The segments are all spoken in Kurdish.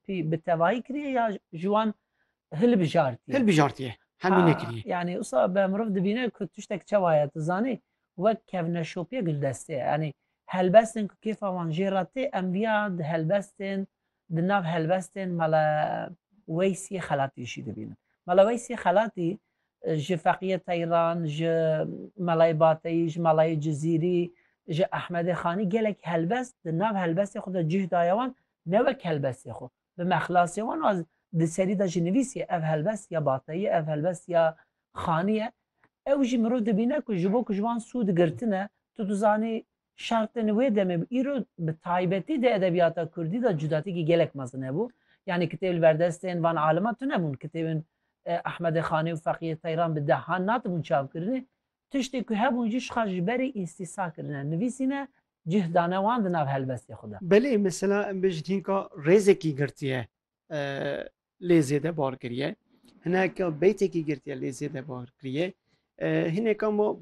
Tî bi tevahî kiriye ya ji wan hilbijartiye? Hilbijartiye, hemî nekiriye. Yanî usa be mirov dibîne ku tiştek çawa ye tu zanî wek kevneşopiye gildestê ye. Yanî helbestên ku kêfa wan jê re tê em viya di helbestên di nav helbestên Mele Weysî Xelatî jî dibînin. Mele Weysî Xelatî ji Feqîye Teyran, ji Melayê Bateyî, ji Melayê Cizîrî, ji Ehmedê Xanî gelek helbest di nav helbestê xwe de cih daye wan ne wek helbestê xwe, bi mexlasê wan a di serî de jî nivîsîye ev helbest ya bateyî ye, ev helbest ya xanî ye, ew jî mirov dibîne ku ji bo ku ji wan sûd girtine, tu dizanî şertên wê demê bi îro bi taybetî di edebiyata kurdî de cudatîkî gelek mezin hebû. Yanî kitêb li ber destên van aliman tunebûn, kitêbên Ehmedê Xanî û Feqiyê Teyran bi dehan natibûn çavkirinê, Tiştê ku hebûn jî şixa ji berî îstîsa kirine, nivîsîne, cih dane wan di nav helbestê xwe de. Belê mesela em bêjin hînka rêzekî girtiye lê zêde bar kiriye, hineka beytekî girtiye lê zêde bar kiriye, hineka ma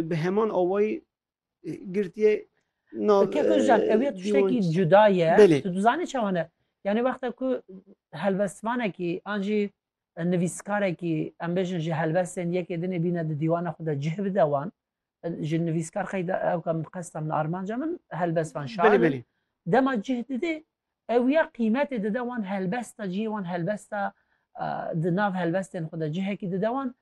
bi heman awayî girtiye nav. Keko Ozcan ew ya tiştekî cuda ye. Tu dizanî çawa ne? Yanî wexta ku helbestvanekî an jî Nivîskarekî em bêjin ji helbestên yekê dinê bîne di dîwana xwe de cih bide wan. Ji nivîskar qeyda ewka min qesta min armanca min helbest van şair. Dema cih didê ew ya qîmetê dide wan helbesta cihê wan helbesta di nav helbestên xwe de cihekî dide wan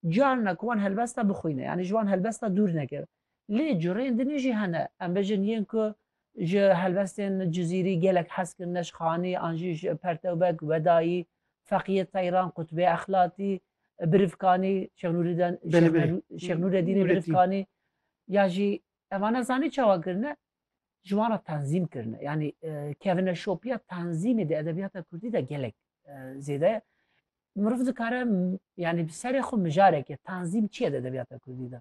Carina ku wan helbesta bixwîne yanî ji wan helbesta dûr neke. Lê cureyên din jî hene, em bêjin yên ku ji helbestên cizîrî gelek hez kirin Neşxanî an jî ji Pertewbeg, Wedayî, Feqîyê Teyran, Qutbê Exlatî, Birivkanî, Şêx Nûrîden, Belê belê. Şêx Nûredînê Nûredîn. Birivkanî ya jî eva nezanî çawa kirine ji wan re tenzîm kirine. Yanî kevneşopiya tenzîmê di edebiyata kurdî de gelek zêde ye. meriv dikare yanî bi serê xwe mijareke tanzîm çiye di edebiyata Kurdî de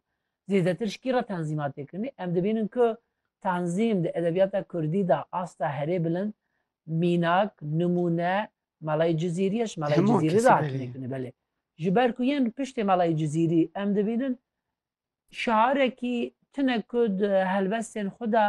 zêdetir ji kî re tanzîma têkirinî em dibînin ku tanzîm di edebiyata Kurdî de asta herê bilind mînak nimûne malayê Cizîrî ye ji malayê Cizîrî re hatîne belê ji ber ku yên piştê malayê Cizîrî em dibînin şarekî tune ku di helbestên xwe de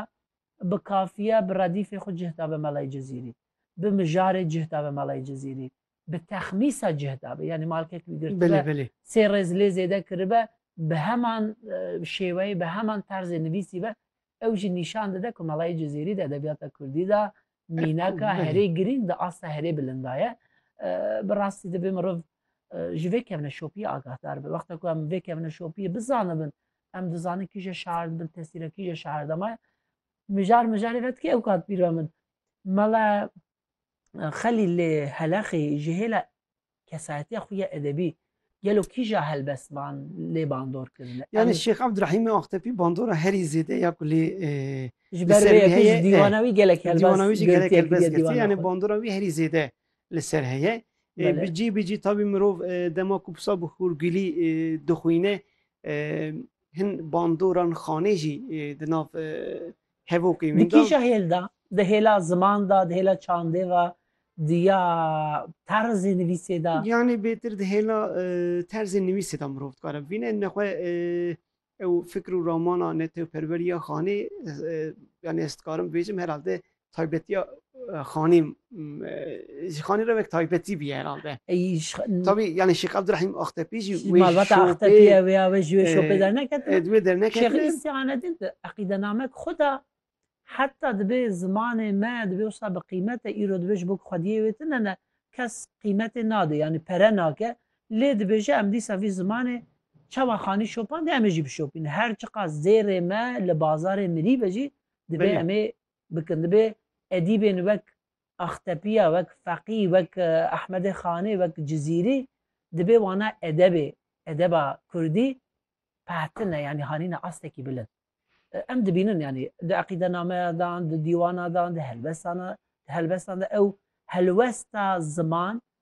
bi kafiye bi redîfê xwe cih dabe malayê Cizîrî bi mijarê cih dabe malayê Cizîrî bi texmîsa cih dabe yanî malkek wî girtibe sê rêz lê zêde kiribe bi heman e, şêweyê bi heman terzê nivîsî be ew jî nîşan dide ku melayê Cizêrî de edebiyata Kurdî de mînaka herê girîng di asta herê bilindaye e, bi rastî dibê mirov e, ji vê kevne şopiyê agahdar be wexta ku em vê kevne şopiyê bizanibin em dizanin kîje şair dibin tesîra kîje şair dema mijar mijarê ve dikê ew kat pîra min mela Xelîl lê Heleqî ji hêla kesayetiya xwe ya edebî gelo kîja helbest ban lê bandor kirine? Yani Şêx Abdurahîmê Aqtepî bandora herî zêde ya ku lê ji ber wê heye dîwana wî gelek helbest dîwana wî jî gelek helbest girtiye yani bandora wî herî zêde li ser heye bi cî bi cî tabî mirov dema ku pisa bi hûrgilî dixwîne hin bandoran xanê jî di nav Hevokê Di wîndan. kêşa hêl de, di hêla ziman de, di hêla çandê ve, di ya terzê nivîsê de. Yanî bêtir di hêla terzê nivîsê de mirov dikare bibîne ne xwe ew fikr û ramana netewperwerîya xanê yanî ez dikarim bibêjim herhalde taybetiya Xanî ji Xanî re wek taybetî bî herhalde. Tabî yanî Şêx Abdurehîm Axtepî jî wê malbata Axtepî ye wê ya wê ji wê şopê derneketine. Di wê derneketine. Şêx Îzî Anedîn di eqîdenamek xwe de heta dibê zimanê me dibê wisa bi qîmet e îro dibê ji bo ku xwediyê wê tune ne kes qîmetê nade yanî pere nake lê dibêje em dîsa vî zimanê çawa Xanî şopandî em ê jî bişopînin her çiqas zêrê me li bazarê mirî be jî dibê em ê bikin. Dibe edîbên wek Axtepiya, wek Feqî, wek Ehmedê Xanê, wek Cizîrî dibe wana edebê, edeba kurdî pehtine yanî hanîne astekî bilind. Em dibînin yanî di eqîdenameya dan, di dîwana dan, di helbesana, di helbestan de ew helwesta ziman